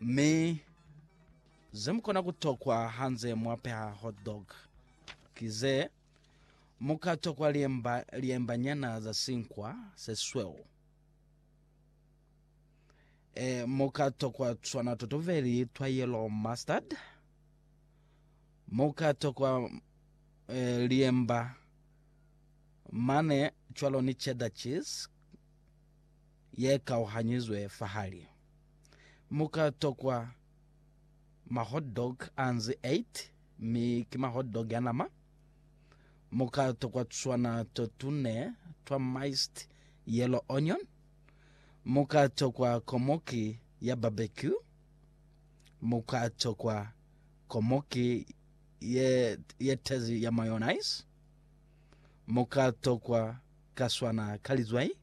Mi zemukona kutokwa hanze mwapeha hot dog ki ze, muka tokwa liemba liemba nyana za sinkwa sesweu. E, muka tokwa tswana totobeli twa yellow mustard. Muka tokwa e, liemba mane cwalo ni cheddar cheese ye kauhanyizwe fahali. Mu ka tokwa ma hot dog a nzi 8, mi ki ma hot dog a nama. Mu ka tokwa tuswana to tune twa miced yellow onion. Mu ka tokwa komoki ya barbecue. Mu ka tokwa komoki ye, ye tezi ya mayonnaise. Mu ka tokwa kaswana ka lizwai.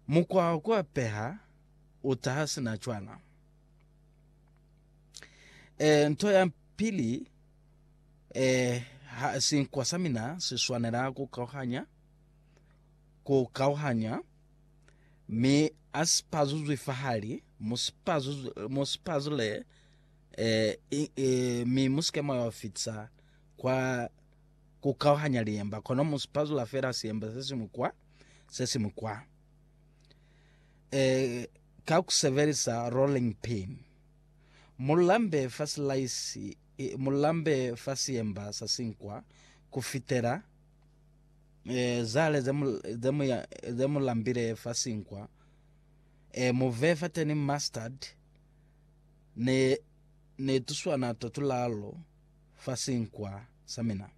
Mukwa wa ku apeha u taha sina cwana. E, nto ya pili, e, ha, sinkwa sa mina si swanela ku kauhanya, ku kauhanya, mi a si pazuzwi fahali, mu si pazuzwi, mu si pazule, e, i, e, mi mu si ke mwa yo fitisa kwa ku kauhanya liemba, kono mu sipazula fela siemba se siñwi kwa, se siñwi kwa, e, ka ku sebelisa rolling pin. Mu lambe fa silaisi, mu lambe fa siemba sa sinkwa ku fitela e, zale ze mu, ze mu, ze mu lambile fa sinkwa, e, mu vee fateni mustard, ne, ne tuswana to tulalo, fa sinkwa sa mina.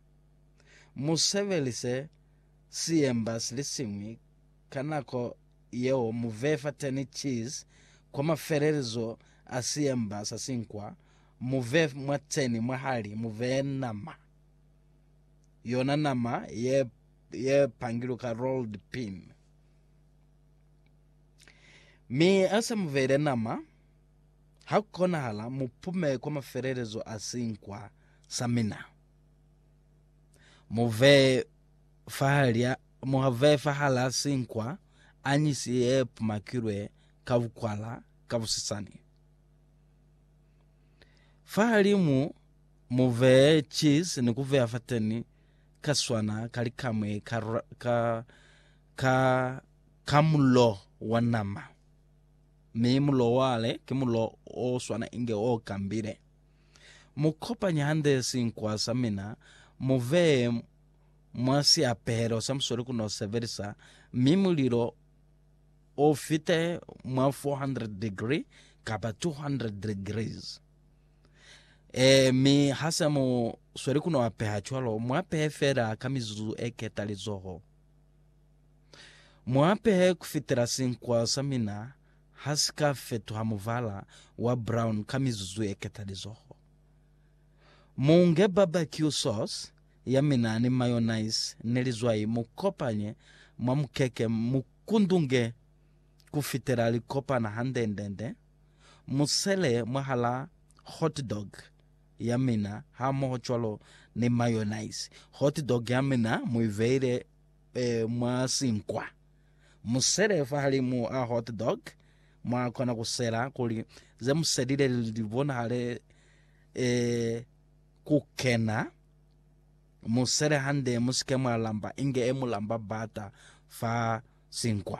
Mu sebelise siemba silisiñwi ka nako yeo mu vee fateni cheese kwa mafelelezo a siemba sa sinkwa, mu vee mwateni mwahali mu vee nama, yona nama ye ye pangilu ka rolled pin. Mi hase mu veile nama, Ha ku konahala, mu pume kwa mafelelezo a sinkwa sa mina. Mu vee fahal'a mu vee fahal'a sinkwa anyisi ye pumakilwe ka bukwala ka busisani. Fahalimu mu vee cheese ni ku vea fateni ka swana ka likamwe ka, ka, ka, ka mulo wa nama. Mi mulo wale ki mulo o swana inge o kambile. Mu kopanye hande sinkwa sa mina, mu veye mwa siapelo sa musweli ku no sebelisa, mi mulilo o fite mwa 400 degree kapa 200 degrees. E, mi ha se mu sweli ku no apeha cwalo, mu apehe fela ka mizuzu e ketalizoho. Mu apehe kufitela sinkwa sa mina ha si ka fetuha mubala wa brown ka mizuzu ye ketalizoho. Mu nge barbecue sauce ya mina ni mayonnaise ni lizwai mu kopanye mwa mukeke mu kundunge kufitela li kopana handendende. Mu sele mwahala hot dog ya mina hamoho cwalo ni mayonnaise. Hot dog ya mina mu i veile e, mwa sinkwa. Mu sele fahalimu a hot dog, mwa kona ku sela kuli ze mu selile li bonahale e, ku kena. Mu sele hande, mu si ke mwa lamba inge e mu lamba bata fa sinkwa.